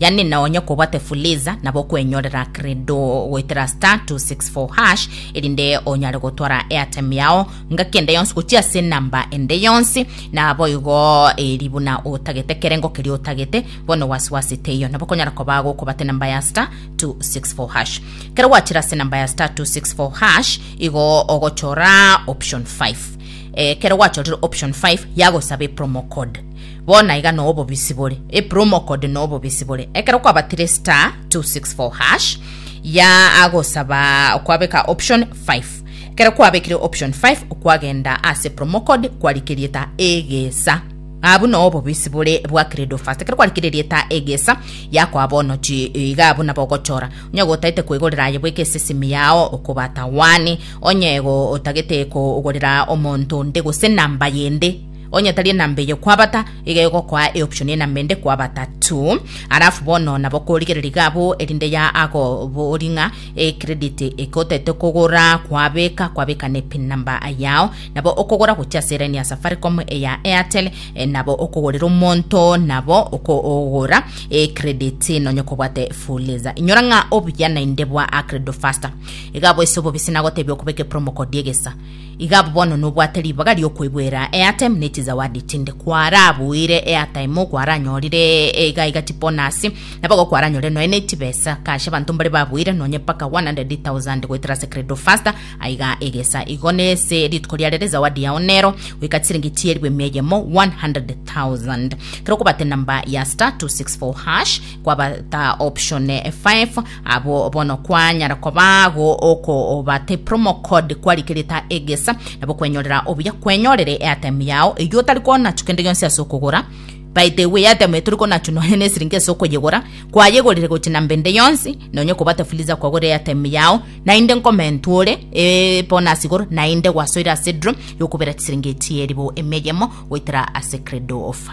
yaani nonye kobwate fuliza nabo okwenyorera credo goetera star 264 hash erinde onyare gotwara airtime yao ngaki ende yonsi gochia ase enamba ende yonsi naboigo eri buna otagete ekerengo keria otagete bono wasiwasi teiyo nabo okonyara koba gokobata enamba ya star 264 hash kero gwachira ase enamba ya star 264 hash igo ogochora option 5 ekero gwachorire option 5 yagosaba epromo code Bono aiga no obobisi bore, a promo code no obobisi bore. Ekero kwabatire star 264 hash ya agosaba kwabeka option 5. Ekero kwabekire option 5 kwagenda ase promo code kwarikerieta egesa. Abu no obobisi bore bwa credo fast. Ekero kwarikerieta egesa yakwa bono chi iga abu nabo ogochora. Onye gotaete kwegorera aye bweka esesimi yao okobata wani. Onye go otagete kogorera omonto onde gose namba yende Onye tari enamba eye kwabata, iga egokoa eoption y'enamba ende kwabata tu. Alafu bono nabo korigereria iga abwo erinde ya ago bori ng'a ecredit eke otaete kogora kwabeka kwabeka ne pin number yao nabo okogora gochia ase line ya Safaricom eya Airtel eh, nabo okogorera omonto nabo okogora ecredit nonye kobwate fuliza inyora ng'a obuya naende bwa acredo faster iga abwo ase obobisi nagotebia okobeka epromo code egesa Iga abwo bono nobwate ribaga ri'okoigwera eatime ne chizawadi chinde kwarabuire eatime okwaranyorire iga iga chibonus nabo igo kwaranyorire nonya ne chibesa kache abanto mbare babuire nonya mpaka 100,000 goetera ase credo faster aiga egesa igo nese rituko riare rezawadi yao nero goika chisiringi chielfu emia eyemo 100,000 kero okobata enamba ya star 264 hash kwabata option 5 Abwo bono kwanyara kobago okobatepra omokod kwarikirita egesa, nabo kwenyorera obuya kwenyorere eatemu yao, eyio otari konachu kende gionsi ase okogora. By the way, eatemu eye tori konachu nonya nesiringi ase okoyegora, kwayegorire gochi na mbende yonsi, nonya okobate fuliza kwagora eatemu yao, naende nkomentu ore ebonasi igoro, naende gwasoire ase draw yokobera chisiringi chieri bo emia eyemo goetera ase credo of